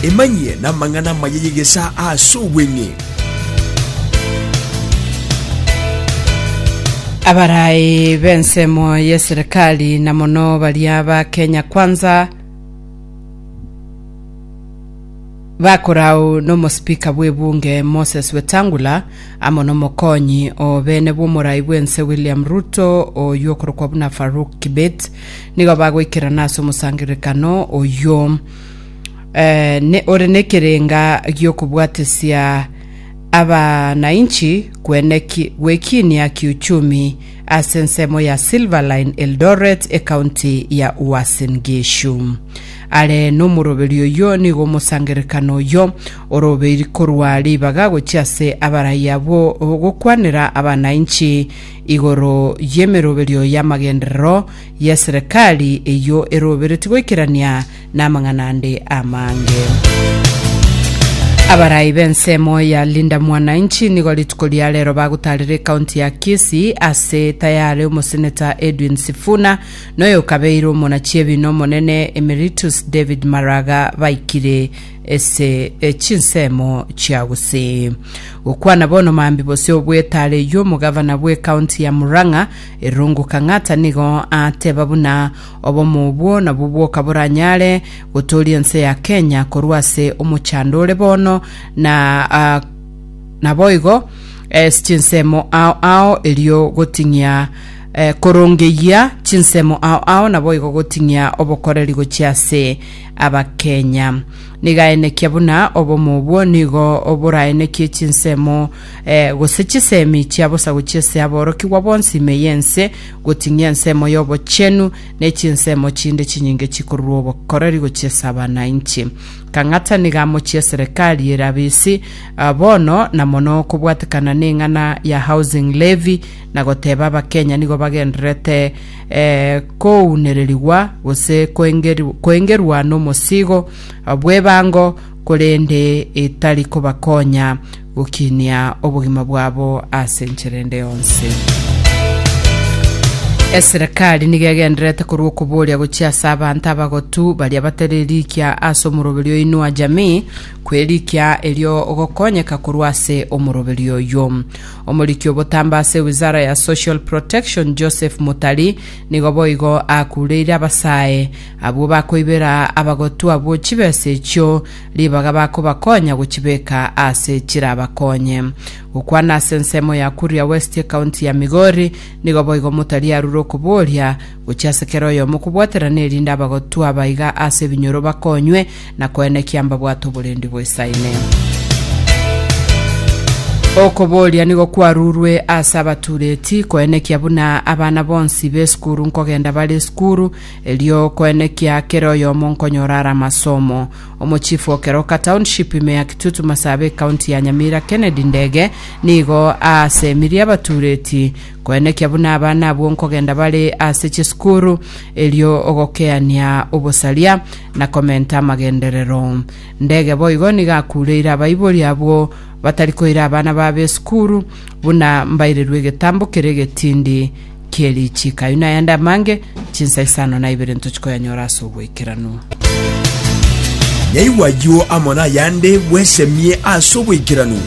Emanyie namang'ana amaya y'egesaa aase obweng'e. Abarai b'ensemo y'eserikali na mono baria ba Kenya Kwanza bakorao n'omosipika bw'ebunge Moses Wetangula amo n'omokonyi o beene bw'omorai bw'ense William Ruto oywo okorokwa buna Farouk Kibet nigo bagoikerana ase omosangererekano oyio eh, ne, ore nekerenga giokobwatesia abanainchi kweneki gwekinia kiuchumi ase ensemo ya Silverline Eldoret ekaunti ya Uasin Gishu are nomoroberi oyio nigo omosangererekano oyio orobeiri korwa ribaga gochia ase abarayia bo gokwanera abanainchi igoro y'emeroberio y'amagenderero y'eserekari eyio eroberetie goikerania namang'ana ande amange. Abarai b'ensemo ya Linda Mwananchi nigo rituko ria rero bagotarera ekaunti ya Kisii ase tayare omoseneta Edwin Sifuna noyokabeire omonachiebina omonene Emeritus David Maraga baikire ase chinsemo chia gusii. Gokwana bono Mambi bosio obwetare eyio omogavana bw'ecounty ya Murang'a Irungu Kang'ata nigo ateba buna obomo obwo nabwo bokaboranyare gotoria ense ya Kenya korwa ase omochando ore bono na ah, naboigo ase chinsemo ao ao erio goting'ia eh, korongeyia chinsemo ao ao naboigo goting'ia obokoreri gochia ase abakenya. Nigaenekia buna obomo obwo nigo boraenekie chinsemo eh, gose chisemi chia bosagu chi'ase aborokigwa bonsi ime y'ense, goting'ia ensemo y'obochenu ne chinsemo chinde chinyinge chikorurwa obokoreri gochia ase abanainchi. Kang'ata nigo amochie eserekari ere abisi ah, bono na mono kobwatekana neng'ana ya housing levy na goteba abakenya nigo bagendererete kounererigwa gose koengerwa nomosigo bw'ebango, korende etari kobakonya gokinia obogima bwabo ase enchera ende yonsi. Eserekari nigo egendererete korwa okoboria gochia ase abanto abagotu baria batari erikia ase omoroberi o Inua Jamii, kw'erikia erio ogokonyeka korwa ase omoroberi oyio. Omoriki obotambe ase Wizara ya Social Protection, Joseph Mutari, nigo boigo akureire abasae abwo bakoibera abagotwa abwo chibesa echio ribaga bakobakonya gochibeka aase chirabakonye. Gokwana ase ensemo ya Kuria West ekaunti ya Migori, nigo boigo Mutari arure okoboria, gochia ase kera oyomo kobwaterana erinde abagotwa abaiga ase ebinyoro bakonywe na koenekia mbabwate oborendi bw'esaine. Okoboria nigo kwarurwe ase abatureti koenekia buna abana bonsi b'esukuru nkogenda bare esukuru erio koenekia kere oyomo nkonyora ara amasomo omochifu okeroka township ime ya kitutu masabe ekaunti ya nyamira kennedy ndege nigo asemirie abatureti koenekia buna abana abwo nkogenda bare ase chisukuru erio ogokeania obosaria na komenta amagenderero. Ndege boigo nigo akuureire abaibori abwo batari koira abana babo esukuru, buna mbairirwe egetambo kere egetindi kie richiiko. Ayio nayande amange, chinsa isano na ibere ntochi koyanyora ase oboikeranu. Naigwa ayio amo nayande bwesemie ase oboikeranu.